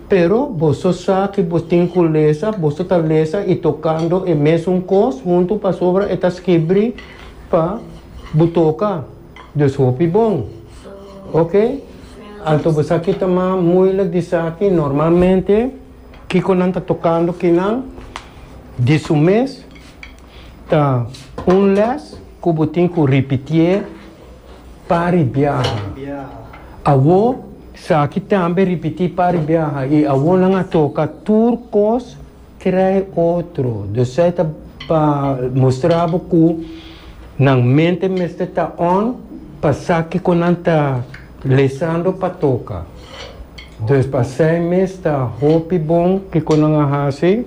Pero boso sa ki bo tin ku lesa, boso ta lesa i tokando e mesun kos huntu pasobra e ta skibri pa bo toka. Dus hopi bon. Oke, anto bo sa ki ta mas muilik di sa ki normalmente kiko nan ta tokando kinan di su mes. Ta un les ku bo tin ku ripitié pari biaha. Awo saki tambe ripití pari biaha i awo nan a toka tur kos krei otro. Dus esei ta pa mustra bo ku nan mente mester ta on pa sa kiko nan ta lesando pa toka. Dus pa esei mes ta hopi bon kiko nan a hasi.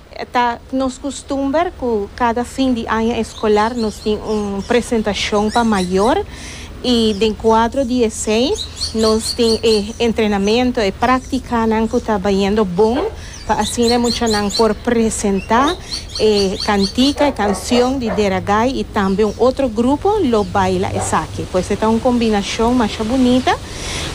Ta nos kustumber ku kada fin di aña eskolar nos tin un presentashon pa mayor i den kuadro di esei nos tin e entrenamentu, e praktikanan ku ta bayendo bon pa asina e muchanan por presentá e kantika, e kansion di Deragai i tambe un otro grupo lo baila esaki. Pues e ta un kombinashon masha bunita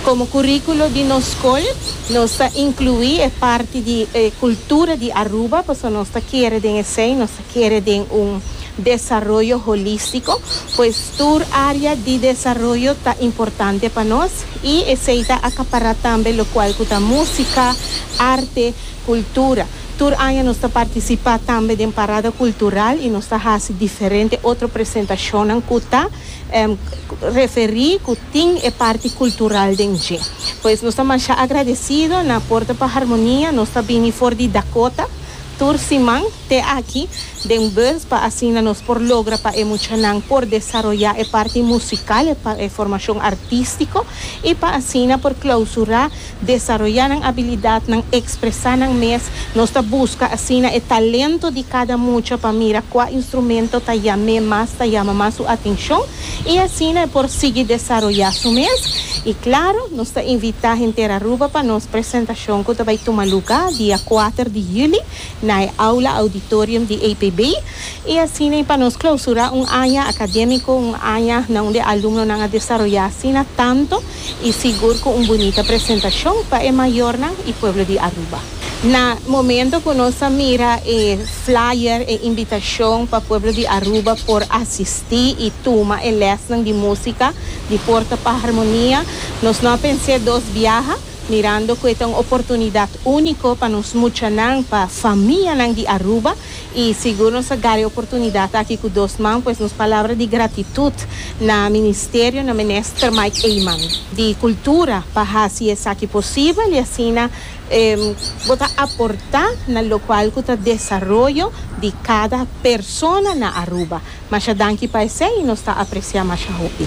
Komo kuríkulo di nos skol nos ta inkluí e parti di e kultura di Aruba pasobra nos ta kere den esei nos ta kere den un desaroyo holístiko, pues tur área di desaroyo ta importante pa nos i esei ta akapará tambe lokual ku ta músika, arte, kultura. Tur aña nos ta partisipá tambe den parada kultural i nos ta hasi diferente otro presentashonnan ku ta referí ku. Tin e parti cultural den dje. Pues nos ta masha agradecido, na Porta pa Harmonia nos ta bini for di Dakota tur siman te aki den bus pa asina nos por logra pa e muchanan por desaroya e parti musical, e formacion artistico y pa asina por clausura Desaroyá nan abilidat, nan ekspresá nan mes. Nos ta buska asina e talento di kada mucha pa mira kua instrumento ta yam'é mas, ta yama mas su atenshon i asina e por sigui desaroyá su mes. I klaro, nos ta invitá henter Aruba pa nos presentashon ku ta bai tuma lugá dia kuater di yüli na e Aula Auditorium di APB i asina i pa nos klausurá un aña akadémiko, un aña na unda e alumnonan a desaroyá asina tanto. y sigur cu un bunita presentacion pa e mayornan y pueblo di Aruba. Na momento cu nos a mira e flyer, e invitacion pa pueblo di Aruba por asisti y tuma e lesnan di musica di Porta pa Harmonia, nos no a pens'e dos biaha, mirando cu e ta un oportunidad unico pa nos muchanan, pa famianan di Aruba, y sigur nos a gari oportunidad aki cu dos man pues nos palabra di gratitud na Ministerio na Minister Mike Eman di Cultura pa haci esaki posibel y asina bo ta aporta na locual cu ta desaroyo di cada persona na Aruba. Masha danki pa esey y nos ta aprecia masha hopi.